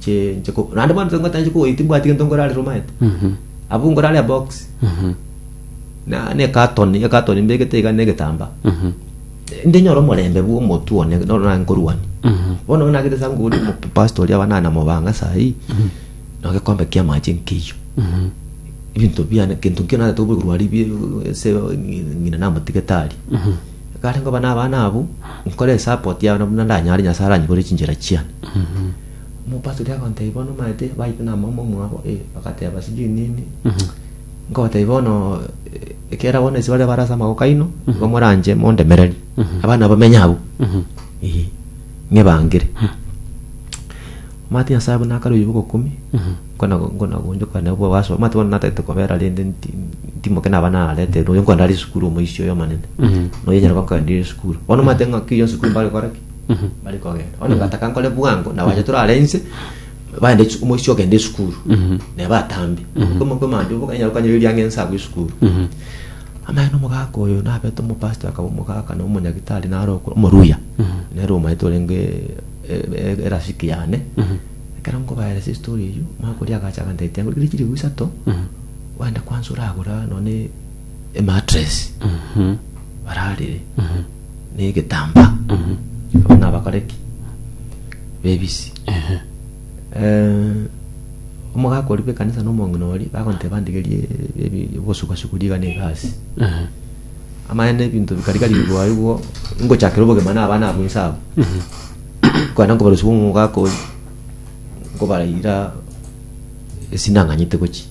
Chinche ko- naende bono tingotanche kogoita timbwati gento nkorarere omanyete abwo nkorare ebox na na ekatoni ekatoni mbegete iga na egetambaa ndinyore omorembe bwa omotu one noro nare nkorwania bono bono nagete ase nguru omopastor oria abanana mobanga sahi na egekombe kia amache nkeiyo ebinto biane gento nkio nagete oborwari bie ase ng'ina namotigete aria ekare nkoba na abana abwo nkore esapoti yabo na buna ndanyare nyasae aranyigorere chinchera chiane Mopastori agontebia pi bono omanete baite na mama omwabo? Ee, bagateba sijui nini. Nkobotebia bono ekera bono ase baria bare ase amagoko aino, igo moranche mondemererie. Abana abo menya abwo. Ee, ng'ebangere. Omate Nyasae buna akare oyio bw'ogokumi, nkona nkonagonchoka nabo obaso. Omate bono natagete kobera rende nti- ntimoke naba nararete noyo nkonde are esukuru omoisia oyo omonene. Noyo nyarebe nkaendire esukuru. Bono omate ng'aki oyio esukuru mbare gokora ki? bari kogenda bono bataka nkore bwango na bache torare inse baende esu- omoisia ogenda esukuru na batambe okomokwe manje obokanyara kanyara erianga ense agwo esukuru amaye na omogaka oyo nabete omopastor akaba omogaka na omonyagitari naro oko- omoruya nere omanyete orenge e- e- erafiki yane ekero nkobaeresa estori eyio omogaka oria agacha agantebitia ngorikire chilifu isato ogende kwansa oragore nonye ematress bararire negetambaa abo nabakore ki bebisi Eh, omogaka oria bw'ekanisa na omong'ina oria bagonteba ndigerie ebi- obosugasugu rigana egasi amaene ebinto bikari kari bigwae bwo ngochakera obogima na abana abwo inse abo kwenda nkobarusia omogaka oria nkobarahira esi nang'anyete gochia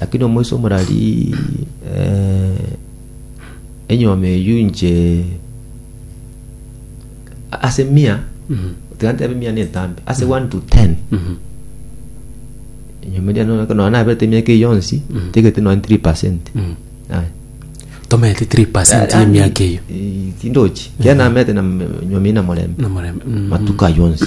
Lakini omoisa omorari, enyuoma eyio inche ase mia, tiga ntebe mia na etambe, ase one to ten, enyuoma eria nonye ekero nonye naberete emiaka eyio yonsi, ntiegete nonye three percent. Aye. tomerete 3 y'emiaka eyio Eh, tindochi, kiaye namerete na enyuoma eyio na morembe, na morembe Mm. matuko ayio onsi.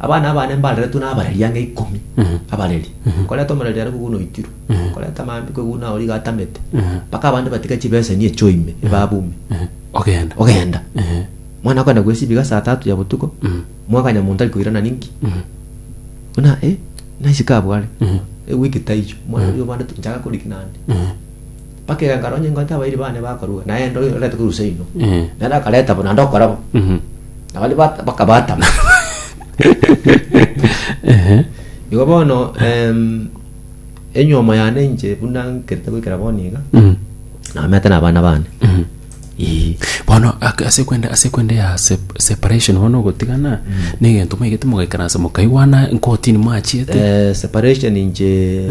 Abana abane mbareretwe nabareri ang'e ikomi, abareri, nkoreta omoreri are kweguna oitirwe, nkoreta maambia kweguna origo atamete, mpaka abande batiga chibeseni echio ime, ebabu ime, Ogenda. ogenda. Mwana okogenda gwesibiga saa tatu ya botuko, mwaka nyamonto tari koirana ninki, buna eh, naisiko abwo are, ewiki taiyo, mwana oria obande nchaga koriki naende. Bakegangara onye ingo tabairi bane bakorua, naende oyo orete korusa inwe. Eh. Naende akareta bo, naende okora bo. Mhm. Na baria bat- bakabatama. Ehe. Igo bono em, enyomo yane inche buna nkerete goikera bono iga, Mhm. namete nabana bane. Mhm. Ii. bono ak- ase kwenda ase kwenda ya sep- separation bono ogotigana na egento maigete mogaikaransa mokaigwana nkotini mwachiete Eh, separation inche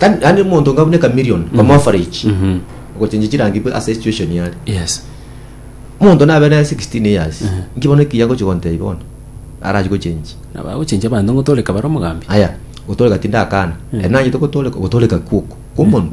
Kani yani omonto ngabune ka million kwa average Mhm. ogochenja chirangi bwe ase situation yare yes omonto nabe ne 16 years Mhm. nkibono ekiya gochi gontei bono arachi gochenji nabagochenja abanto ng'o toreka bare omogambi aya gotoreka tindakana Mhm. eri nanyete gotoreka gotoreka kwoko kw'omonwa